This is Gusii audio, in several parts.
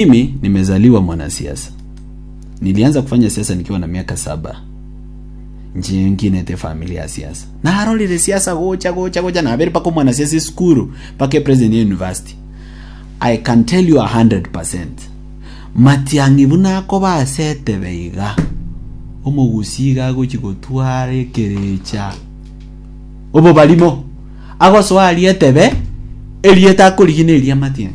Mimi nimezaliwa mwanasiasa. Nilianza kufanya siasa nikiwa na miaka saba. Nchi nyingine te familia ya siasa. Narorire siasa gocha gocha gocha nabere paka mwanasiasa esukuru paka president ya university. I can tell you 100%. Matiang'i buna akoba ase etebe iga. Omogusi iga agochi gotwara ekerecha. Obo barimo. Agosoa aria etebe erieta akorigina eria Matiang'i.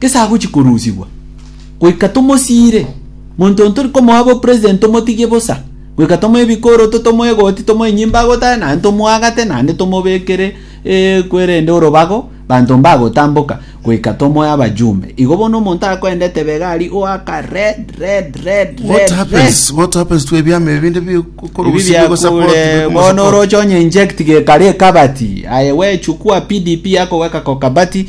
Gese agochia korusigwa, goika tomosiire, monto on tori komoa bo president tomotigie bosa, goika tomoe bikoroto, tomoe egoti, tomoe nyimbo agotare, naende tomoagate, naende tomobekere ekwerende orobago, banto mbagotamboka, goika tomoe abajumbe. Igo bono omonto akoendete begari oaka red, red, red, What red, red. happens? What happens to ebiama ebi binde Ebi bikorusigwa gose biakure botigwe bono komosa oroche onye inject gekare ekabati aye wechukua PDP yakoweka kokabati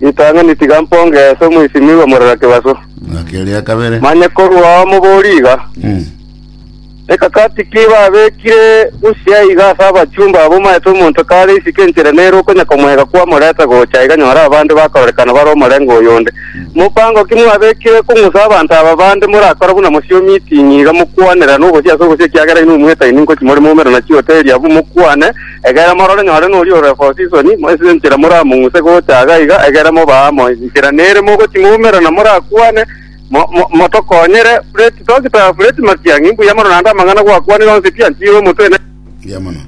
Ritang'ani tiga mpongese omoisimigwa morera kebaso. Ng'aki eria ya kabere. Manye korwa ao moborie iga, Mm. Ekakati ki babekire bosio aiga ase abachumba abo omaete omonto kare isiko enchera nere okonya komoega kwamoreta gocha aiga nyore abande bakororekana bare omorengo oyonde. Mopango ki mwabekire kong'usa abanto aba bande morakore buna mosio meeting iga mokwanerane obosie ase obosie ekiagera inwe mwetaini ngochia more moumera na chihoteli abwo mokwane Egere morore nore noria ore Bosisoni, moisire enchera moramong'use gocha iga iga, egere mobaa amo inchera nere mogotimoumera na morakwane, Mo, mo, motokonyere, Fureti toki ta Fureti Matiang'i, mbuya mono naende amang'ana gwakwanire onsi pi antiire omotwe ne... Mbuya mono.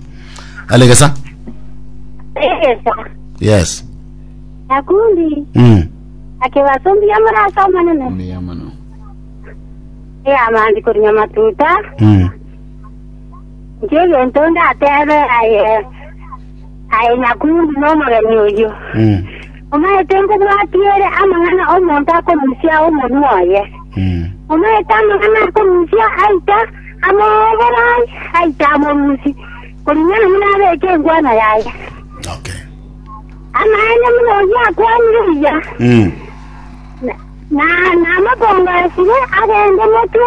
Alegesa. Egesa. Yes. Nakundi. Mm. Akebaso mbuya morase omonene. Mbuya mono. Eamandi korinya matuta. Mm. Inche egento ndatebe aye, aye nyakungu na omogeni oyio, Mm. omaete nkobwatiere amang'ana omonto akorusia omonwa oye. Mm. Omaete amang'ana akorusia aita amoboro aye, aita amorusi, koring'ana buna abeke engwano yaye. Okay. Amaene buna oyio akwanire buya, Mm. na- na- namabongo asire agende motwe